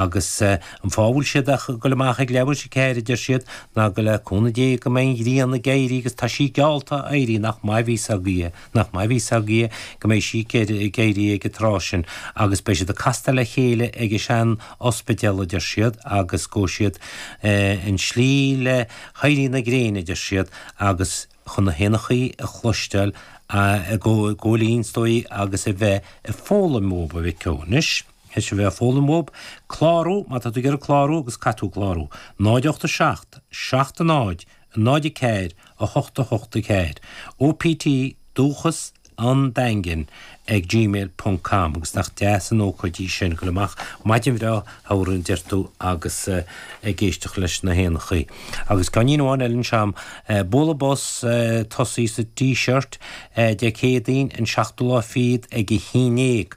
Agus an fáth a bhfuil siad ag goil amach ag leathuair tar éis a ceathair, a deir siad, ná go le cúnamh Dé go mbeidh an ghrian ag éirí agus tá sí geallta a éirí, nach maith a bhí fhios againne, nach maith a bhí fhios againne go mbeidh sí ag éirí ag an tráth sin agus beidh siad ag castáil le chéile ag an sean-ospidéal, a deir siad, agus gabhfaidh siad an tslí le héirí na gréine, a deir siad, agus chun na héanachaí a chloisteáil ag gabháil fhoinn, is dóigh, agus a bheith ag foghlaim uathu, a mhic ó, anois. Is a bheith ag foghlaim uathu, clárú má tá tú ag iarraidh clárú agus caithfidh tú clárú. 0 8 7 7 0 0 4 8 8 4 OPT dúchas an daingin ag gmail ponc com agus nach deas an ócáid í sin, a ghoil amach, maidin bhreá shamhraidh deir tú agus ag éisteacht leis na héanachaí. Agus ceáinín amháin eile anseo a'm. Bualadh bos ag tosaí sa Díseart Dé Céadaoin an seachtú lá fichead ag a haon dhéag.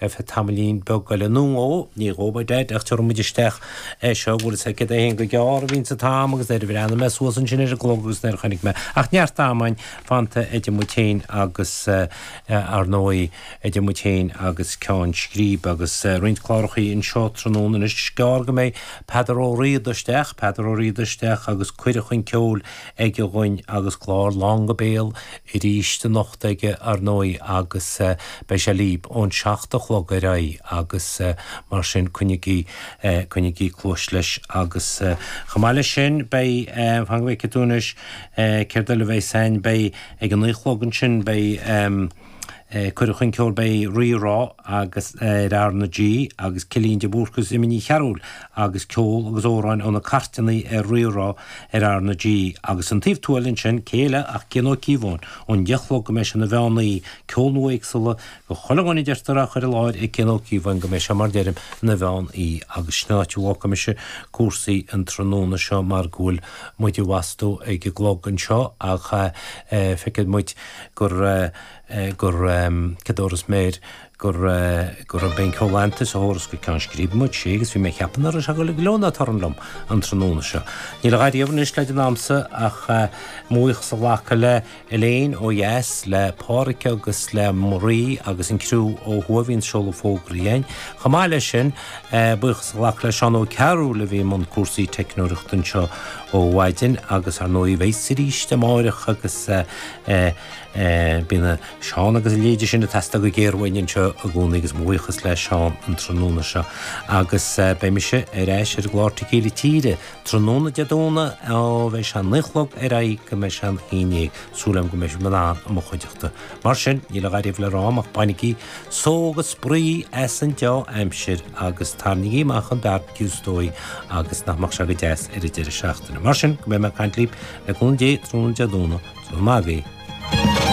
F, Tamaillín beag eile nó dhó, ní dhóbair Deaid, ach tabharfaidh muid isteach é seo, bhfuil a fhios agat céard é féin gur gearr a bhíonns an t-am agus nuair a bhreathnaigh mé suas ansin ar an gclog agus nuair a chonaic mé ach neart ama fanta idir muid féin agus ar ndóigh idir muid féin agus Ceann Scríbe agus roinnt clárachaí anseo tráthnóna anois is gearr go mbeidh Peadar Ó Riada isteach, Peadar Ó Riada isteach agus Cuireadh chun Ceoil. aige dhúinn agus clár lán go béal aríst anocht aige, ar ndóigh, agus beidh sé libh ón seacht a chlog ar aghaidh agus mar sin coinnigí, coinnigí cluais leis agus chomh maith leis sin beidh, fan go bhfeice tú anois, céard eile a bheas ann, beidh ag a naoi chlog ansin beidh, Cuireadh chun Ceoil beidh Rí Rá agus ar R na G agus Cillian de Búrca agus Emma Ní Chearúil agus ceol agus amhráin ó na cairteanna ar Rí Rá ar R na G agus An Taobh Tuathail ansin cé eile ach Cian Ó Cíobháin ón deich a chlog go mbeidh sé ina mheán oíche ceol nua éagsúil do chuile dhuine a deirtear á chur i láthair ag Cian Ó Cíobháin go mbeidh sé mar deirim ina mheán oíche agus sin an áit a bhfágfaidh mise cúrsaí an tráthnóna seo mar go bhfuil muid i bhfastó ag an gclog anseo ach feicfidh muid gur, gur, Cador is mér, gur, go raibh Ben Culanthe sa turas go ceann scríbe, muid, si, agus bhí mé ag ceapadh nach raibh sé ag dul ag gleo ná torann liom an tráthnóna seo. Níl a dhath riamh anois le déanamh a'msa ach mo bhuíochas a ghlacadh le Elaine ó dheas, le Páraic agus le Marie agus an criú ó thuaidh a bhíonn ag seoladh fógraí againn. Chomh maith leis sin, Buíochas a ghlacadh le Seán Ó Cearúil a bhí i mbun cúrsaí teicneoireachta anseo ó mhaidin agus ar ndóigh a bheas aríst amáireach agus bíonn Seán agus a leithéidí sin ag teastáil go géar uainn anseo i gcónaí agus mo bhuíochas le Seán an tráthnóna seo agus beidh mise ar ais ar an gclár Tequila Tíre tráthnóna Dé Domhnaigh ó bheidh sé a naoi a chlog ar aghaidh go mbeidh sé a haon dhéag, súil agam go mbeidh sibh in ann i mo chuideachta. Mar sin, níl a dhath riamh le rá a'm ach bainigí Seo, bainigí spraoi as an deá-aimsir agus tarraingigí amach an bearbaiciú is dóigh agus nach mbeidh sé go deas ar an deireadh seachtaine. Mar sin, go mbeidh mé ag caint libh, le cúnamh Dé, tráthnóna Dé Luain, slán agaibh.